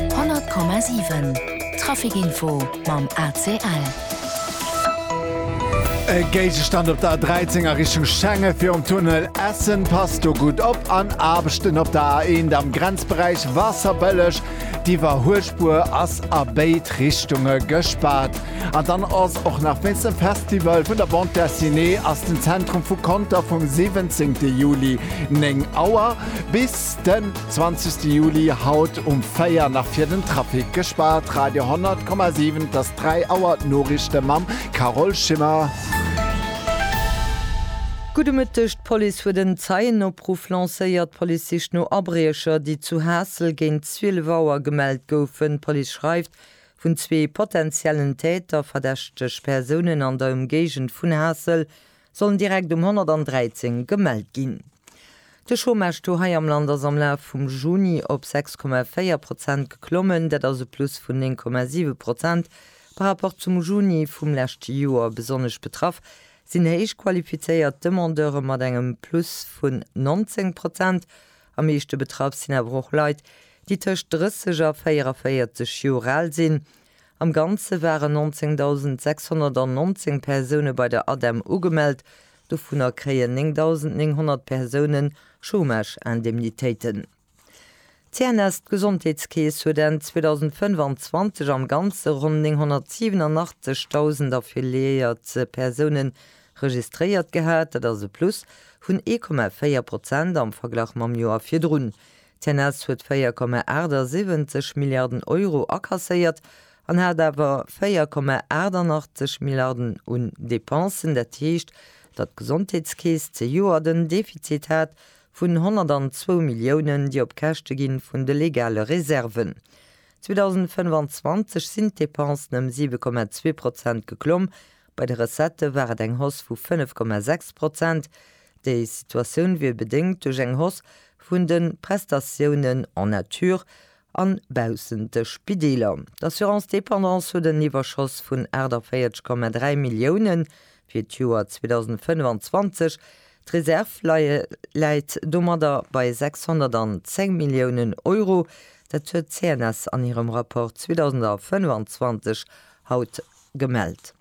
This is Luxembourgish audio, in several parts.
100,7 Trafic Info mam ACL. E Géigestand op der A13 a Richtung Schengen virum Tunnel Essen passt do gutt op. An Aarbechten op der A1 am Grenzberäich Wasserbëlleg. D'Iwwerhuelspuer ass a béid Richtunge gespaart. An dann ass och nach wéinst dem Festival vun der Bande Dessinée ass den Zentrum vu Conter vum 17 Juli 9 Auer bis Den 20 Juli haut um 4 nach fir den Trafic gespaart. Radio 10,7 't ass 3 Auer, d'Noriichte mam Carole Schimmer. Gudde Mëtteg, D'Police huet en Zeienopruff lancéiert. D'Police sicht no Abriecher, déi zu Haassel géint 12 Auer gemellt goufen. D'Police schreift vun zwee potentiellen Täter, verdächteg Persounen an der Ëmgéigend vun Haassel. sollen direkt um 113 gemellt ginn. De Chômage-Taux hei am Land ass am Laf vum Juni op 6,4 Prozent geklommen, dat ass e Plus vun 9,7 Prozent par rapport zum Juni vum leschte Joer. Besonnesch betraff sinn héich qualifizéiert Demandeure mat engem Plus vun 19 Prozent. Am meeschte betraff sinn awer och Leit, déi tëscht 30 a 44 Joer al sinn. Am Ganze waren 19.619 Persoune bei der ADEM ugemellt, dovunner kréien 9.900 Persoune Chômage-Indemnitéiten. D'CNS, d'Gesondheetskeess, huet Enn 2025 am Ganze ronn 987.000 affiliéiert Persoune registréiert gehat, dat ass e Plus vun 1,4 Prozent am Verglach mam Joer virdrun. D'CNS huet 4,78 Milliarden Euro akasséiert an hat awer 4,88 Milliarden un Depensen. Dat heescht, datt d'Gesondheetskeess zejoert en Defizit hat vun 102 Milliounen, déi op Käschte gi vun de legale Reserven. 2025 sinn d'Depensen ëm 7,2 Prozent geklomm Bei de Recettë war et eng Hausse vu 5,6 Prozent. Déi Situatioun wier bedéngt duerch eng Hausse vun de Prestatiounen en nature a baussent de Spideeler. D'Assurance dépendance huet en Iwwerschoss vun 48,3 Milliounen fir d'Joer 2025. D'Reserv läit domadder bei 610 Milliounen Euro. Dat huet d'CNS an hirem Rapport 2025 haut Gemellt.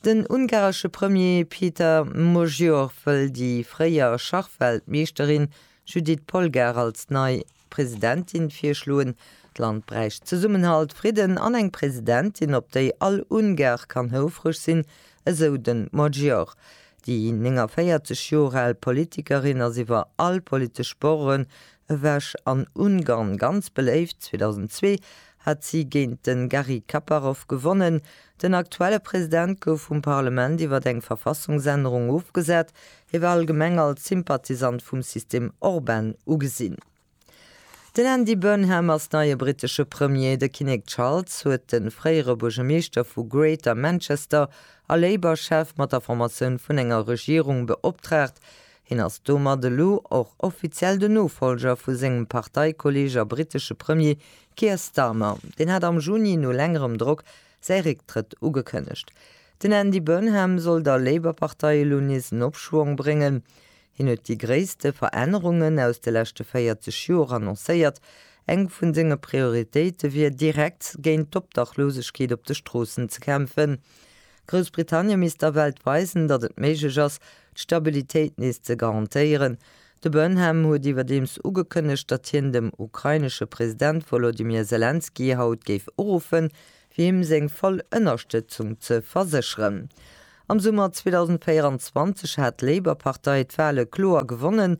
Den ungaresche Premier Péter Magyar wëll déi fréier Schachweltmeeschterin Judit Polgár als nei Presidentin virschloen. D'Land bräicht Zesummenhalt, Fridden an eng Presidentin, op déi all Ungar kann houfreg sinn, esou de Magyar. Déi 49 Joer al Politikerin ass iwwer all politesch Bordure ewech an Ungarn ganz beléift. 2002 hat si géint de Garry Kaparov gewonnen. Den aktuelle President gouf vum Parlement iwwer eng Verfassungsännerung ofgesat. Hie war allgemeng als Sympathisant vum System Orban ugesinn. Den Andy Burnham ass neie brittesche Premier. De Kinnek Charles huet de fréiere Buergermeeschter vu Greater Manchester a Labour-Chef mat der Formatioun vun enger Regierung beoptraagt, Hien ass domat elo och offiziell den Nofollger vu sengem Parteikolleeg a brittesche Premier Keir Starmer. Deen hat am Juni no längerem Drock säi Récktrëtt ugekënnegt. Den Andy Burnham soll der Labour-Partei elo nees en Opschwong bréngen. Hien huet déi gréisste Verännerungen aus de leschte 40 Joer annoncéiert. Eng vun senge Prioritéite wier direkt géint d'Obdachlosegkeet op de Stroossen ze kämpfen. Groussbritannien misst der Welt weisen, datt et méiglech ass, d'Stabilitéit nees ze garantéieren. De Burnham huet iwwerdeems ugekënnegt, datt hien dem ukrainesche President Wolodymyr Selenskyj haut géif uruffen, fir him seng voll Ënnerstëtzung ze versécheren. Am Summer 2024 hat d'Labour-Partei d'Wale kloer gewonnen,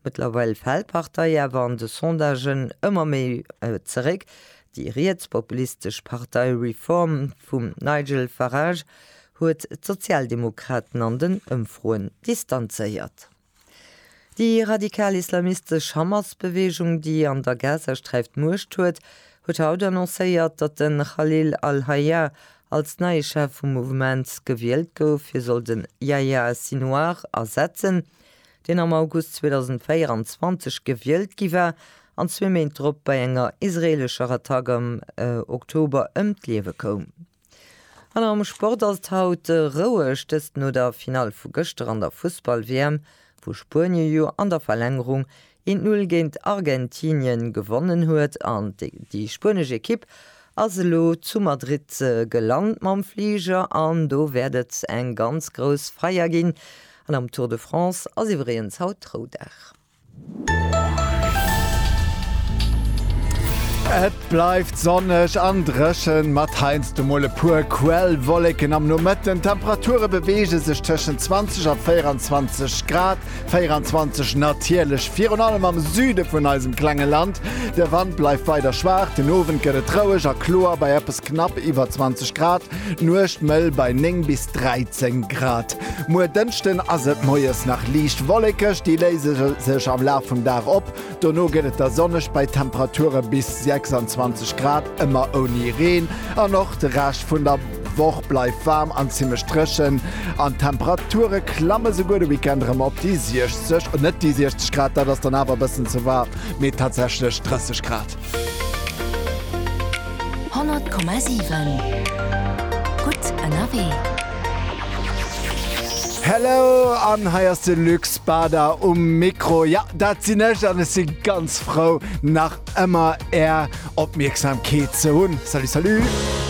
Mëttlerweil fält d'Partei awer an de Sondagen ëmmer méi zeréck. Déi rietspopulistesch Partei Reform vum Nigel Farage huet d'Sozialdemokraten an den Ëmfroen distanzéiert. Déi radikal-islamistesch Hamas-Beweegung, déi an der Gazasträif d'Muecht huet, huet haut annoncéiert, datt de Khalil al-Hayya als neie Chef vum Mouvement gewielt gouf. Hie soll de Yahya Sinouar ersetzen. deen am August 2024 gewielt gi war an zwee Méint drop bei enger israeelescher Attack am Oktober ëm d'Liewe koum. An am Sport ass et haut roueg, dëst no der Finall vu gëschter an der Fussball-WM, wou Spuenien jo an der Verlängerung Een d'Null géint Argentinien gewonnen huet an déi spuenesch Ekipp ass elo zu Madrid gelant mam Fliger an do wäert et eng ganz grouss Feier ginn. An am Tour de France ass iwwregens haut Roudag. Et bleift sonneg an dréchen, mat heiansdo mol e puer Quellwollécken am Nomëtten. D'Temperature beweege sech tëschent 20 a 24 Grad, 24 natierlech virun allem am Süde vun eisem klenge Land. De Wand bleift weider schwaach, den Owend gëtt et roueg a kloer bei eppes knapp iwwer 20 Grad, d'Nuecht mëll bei 9 bis 13 Grad. Muer Dënschden ass et moies nach liicht wollekeg, déi léise sech am Laf vum Dag op. Dono gëtt et da sonneg bei Temperature bis 26 Grad, ëmmer ouni Reen. An och de Rescht vun der Woch bleift waarm an zimmlech dréchen an d'Temperature klamme souguer de Weekend erëm op déi 60, net déi 60 Grad, dat ass dann awer e bëssen ze waarm, mee tatsächlech 30 Grad. 100,7 gutt ënnerwee. Hello an hei ass de Lux. D'Bada um Mikro, jo dat sinn ech an ech si ganz frou nach ëmmer är Opmierksamkeet ze hunn. Salut salut!